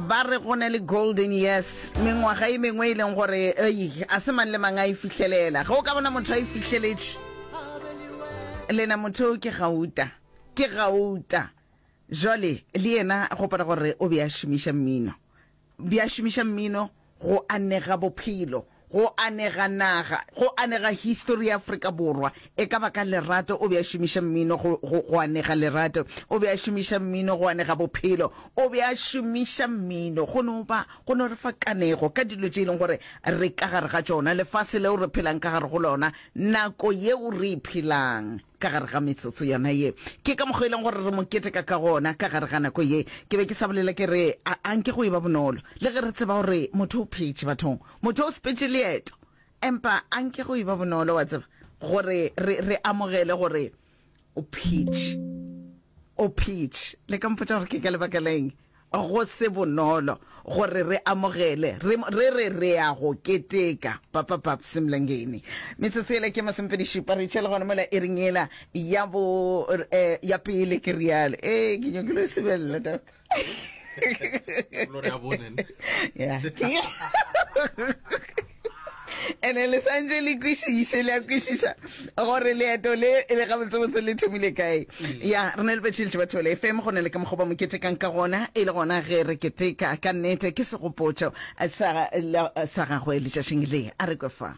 ba re go ne le golden yes mengwaga e mengwe e leng gore ei a se mang le mang a e fihlelela ge o ka bona motho a e fihleletše lena motho o ke gauta ke gauta jale le yena go pala gore o be a šomiša mmino be a šomiša mmino go anega bophelo, go anega naga, go anega histori ya Afrika Borwa. E ka ba ka lerato o be a šomiša mmino go, go, go anega lerato, o be a šomiša mmino go anega bophelo, o be a šomiša mmino go no ba, go no re fa kanego ka dilo tše e leng gore re ka gare ga tšona, lefase leo re phelang ka gare go lona, nako yeo re e phelang. ka gare ga metsotso yona ye. Ke ka mokgo e leng gore re mo keteka ka gona ka gare ga nako ye. Ke be ke sa bolela ke re, a, a nke go eba bonolo, le ge re tseba gore motho o phetše, bathong, motho o sepetše leeto. Empa a nke go eba bonolo, wa tseba, gore re, re amogele gore O phetše. O phetše. Le ka mpotša gore ke ka lebaka la eng? Go se bonolo gore re amogele re, re re re ya go keteka. Papa Babs Mlangeni. Metsotso yela ke masomepedi-šupa, re tšhele gona mola iring yela ya bo, eh, ya pele, ke realo. Ee, ke nyakile go sebelela, Doc. Gloria Bonen. Yeah. ene le santse le kwešiše le ya kwešiša gore leeto le e le gabotsebotse le thomile kae mm. ya re ne le betšhiletše batho le fm go ne le ka mokgoba mo ketekang ka gona e le gona ge re keteka ka nnete ke segopotšo sa gagwe letšatšing le a re kwe fa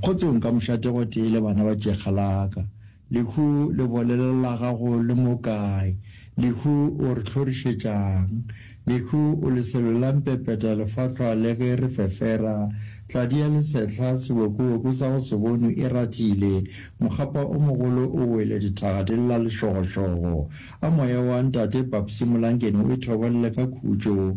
Kgotsong ka mošate gotee le bana ba tšekga la ka. Lehu le bolele la gago le mo kae? Lehu o re hlorišetšang? Lehu o leselo la mpepeta lefahlwa le ge re fefera. Tladi ya lesehla, sebokoboko sa go se bonwe e ratile. Mokgapa o mogolo o wele dithaga di lla lešogošogo. A moya wa Ntate Papsi Molankeni o ithobolle ka khutšo.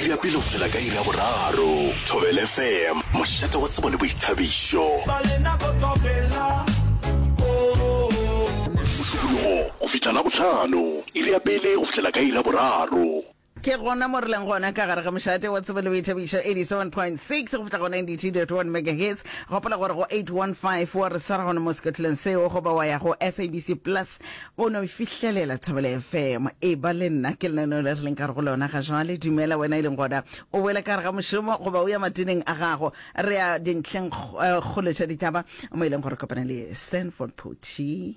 iri ya pele go fihla ka iri ya boraro thobel fm mošate wa tsebo le boithabišo mosupologo go fihla la bohlano iri ya pele go fihlela ka iri ya boraro ke gona mo re leng gona ka gare ga mošate wa tsebo le boithabišo 87.6 go fihla go 92.1 megahertz gopola gore go 815 wa re sara gone mo scotland seo goba wa ya go sabc plus o no fihlelela thobele fm e ba le nna ke lenaneo le re leng ka re go lona ga jale dumela wena e leng gona o boele ka re ga mošomo goba o ya matineng a gago re ya dintlheng eh, kgolo tša ditaba mo e leng gore kopana le sanford poti